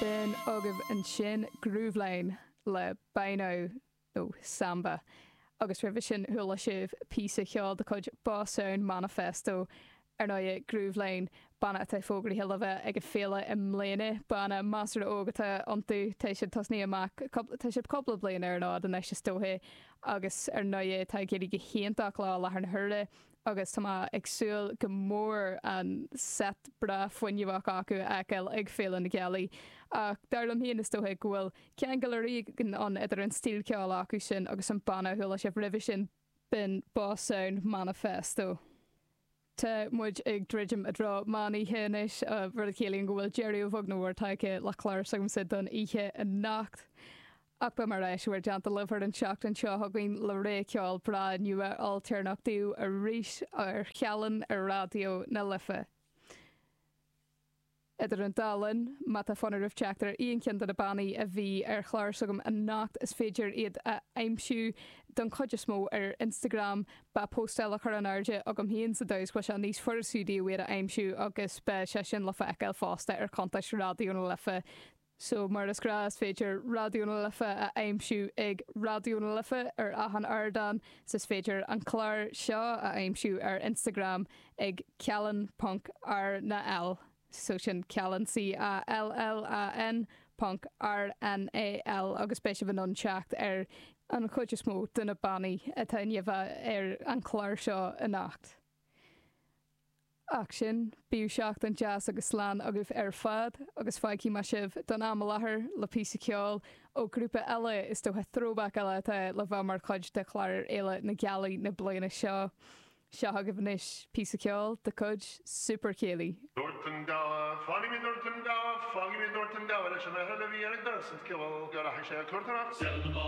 B'in agaibh ansin Grooveline le Bino, nó Samba, agus roimhe sin chuala sibh píosa cheoil de chuid Boss Sound Manifesto. Ar ndóighe, Grooveline, banna atá fógraithe le bheith ag an fhéile i mbliana, banna measartha óg atá iontu, tá siad tosnaithe amach cúpla, tá siad cúpla bliain ar an fhód anois is dóiche, agus ar ndóighe tá ag éirí go híontach leo i láthair na huaire, agus tá mé ag súil go mór an seit breá fuinneamhach acu a fheiceáil ag Féile na Gealaí, ach dar liom féin is dócha go bhfuil ceangal éigin ann idir an stíl ceoil acu sin agus an banna a chuala sibh roimhe sin, b'in Boss Sound Manifesto. Tá muid ag druidim i dtreo meán oíche anois, rud a chiallaíonn go bhfuil deireadh, a bheag nó a mhór, tagtha le clár s'agamsa don oíche anocht. Ach beidh mé ar ais i bhur dteannta libh ar an tseachtain seo chugainn le ré ceoil breá nua ailtéarnach daoibh arís ar Cheallan ar Raidió na Life. Idir an dá linn, má tá fonn oraibh teacht ar aon cheann de na bannaí a bhí ar chlár s'agam anocht is féidir iad a aimsiú don chuid is mó ar Instagram. Beidh póstáil á chur in airde agam féin sa dóigh is go mbeadh sé níos fusa daoibh iad a aimsiú agus beidh sé sin le feiceáil fosta ar chuntas Raidió na Life. So, mar is gnáth, is féidir Raidió na Life a aimsiú ag Raidió na Life ar achan ardán, 's is féidir an clár seo a aimsiú ar Instagram ag ceallan.rnal, so sin ceallan C-e-a-l-l-a-n ponc r-n-a-l agus beidh sibh in ann teacht ar an chuid is mó de na bannaí a bhí ar an chlár seo anocht. Ach sin é, bíodh seachtain deas agus slán agaibh ar fad, agus fágfaidh mé sibh, don am i láthair, le píosa ceoil ó ghrúpa eile, is dócha throwback eile atá le bheith mar chuid de chlár ar Fhéile na Gealaí na bliana seo. Seo chugaibh anois píosa ceoil de chuid Super Céilí. Dúirt an gabha, Fágfaidh mé, dúirt an gabha, fágfaidh mé, dúirt an gabha leis an fhear eile a bhí ag doras an tslua go rachaidh sé ag cúrtóireacht.